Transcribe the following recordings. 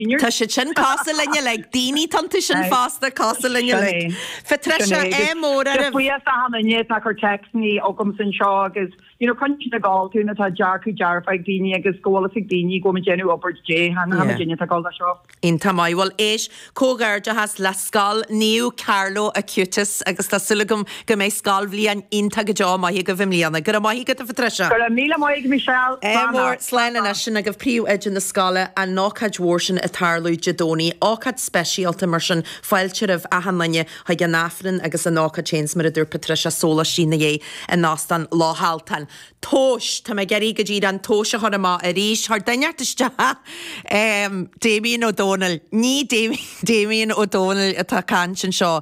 Tá siad sin cosúil linn uilig. Daoine atá iontu sin fosta cosúil linn uilig. Phatricia, é mór oraibh. Fiafraí as am inné atá cur text chugamsa anseo agus you know coinne sin ag fháil tú nó tá dearcadh dearfa ag daoine agus go bhfuil fhios ag daoine go bhfuil muid déanamh obair do Dé cheana tá muid déanamh tá gá le seo. Iontach maith. Bhuel, éist, comhghairdeachas le Scoil Naomh Carlo Acutis agus tá súil agam Go mbeidh scoilbhliain iontach go deo maith agaibh i mbliana. Go raibh maith agat, a Phatricia. Go raibh míle maith agat, Michelle. Slán leat. Slán anois sin agaibh Príomhoide na scoile an ócáid mhór sin ag tarlú Dé Domhnaigh. Ócáid speisialta mar sin fáilte roimh achan duine chuig an Aifreann agus an ócáid féin 's mar a dúirt Patricia sólaistí ina dhiaidh in Óstán Loch Altan. Tomhais! Tá mé ag iarraidh go díreach an tomhais a chur amach arís chuir duine inteacht isteach! Damien Ó Dónaill Ní Damien Ó Dónaill atá ag caint anseo.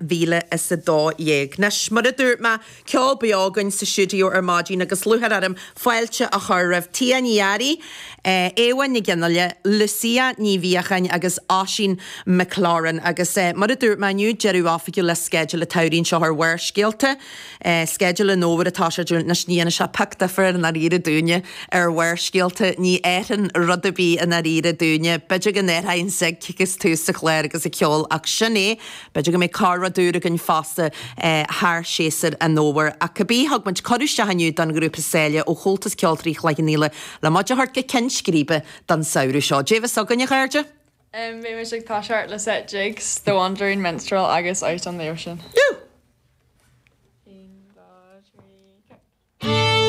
mhíle is a dó dhéag. Anois, mar a dúirt mé, ceol beo againn sa stiúideo ar maidin agus lúcháir orm fáilte a chur roimh Tia Ní Fhearraigh, Éabha Nic Fhionnaile, Lucia Ní Mhiacháin agus Oisín McLaren. Agus mar a dúirt mé inniu, deireadh oifigiúil le sceideal an tsamhraidh seo ar Bharrscéalta. Sceideal an fhómhair atá sé. Anois, ní dhéanann sé pioc difir i ndáiríre dúinne ar Bharrscéalta, ní athraíonn rud ar bith i ndáiríre dúinne. B'fhéidir go n-athraíonn an sig agus tús an chláir agus an ceol ach sin é. B'fhéidir go mbeidh corr-rud úr againn fosta thar shéasúr an fhómhair. Ach cibé, thug muid cuireadh isteach inniu don ghrúpa Sáile ó Chomhaltas Ceoltóirí Chloich Cheann Fhaola le muid a thabhairt go ceann scríbe don samhradh seo. Dé bheathasa chugainn, a chairde! Beidh muid ag toiseacht le seit jigs, The Wandering Minstrel agus Out on the Ocean. Woo! One, two, three, go!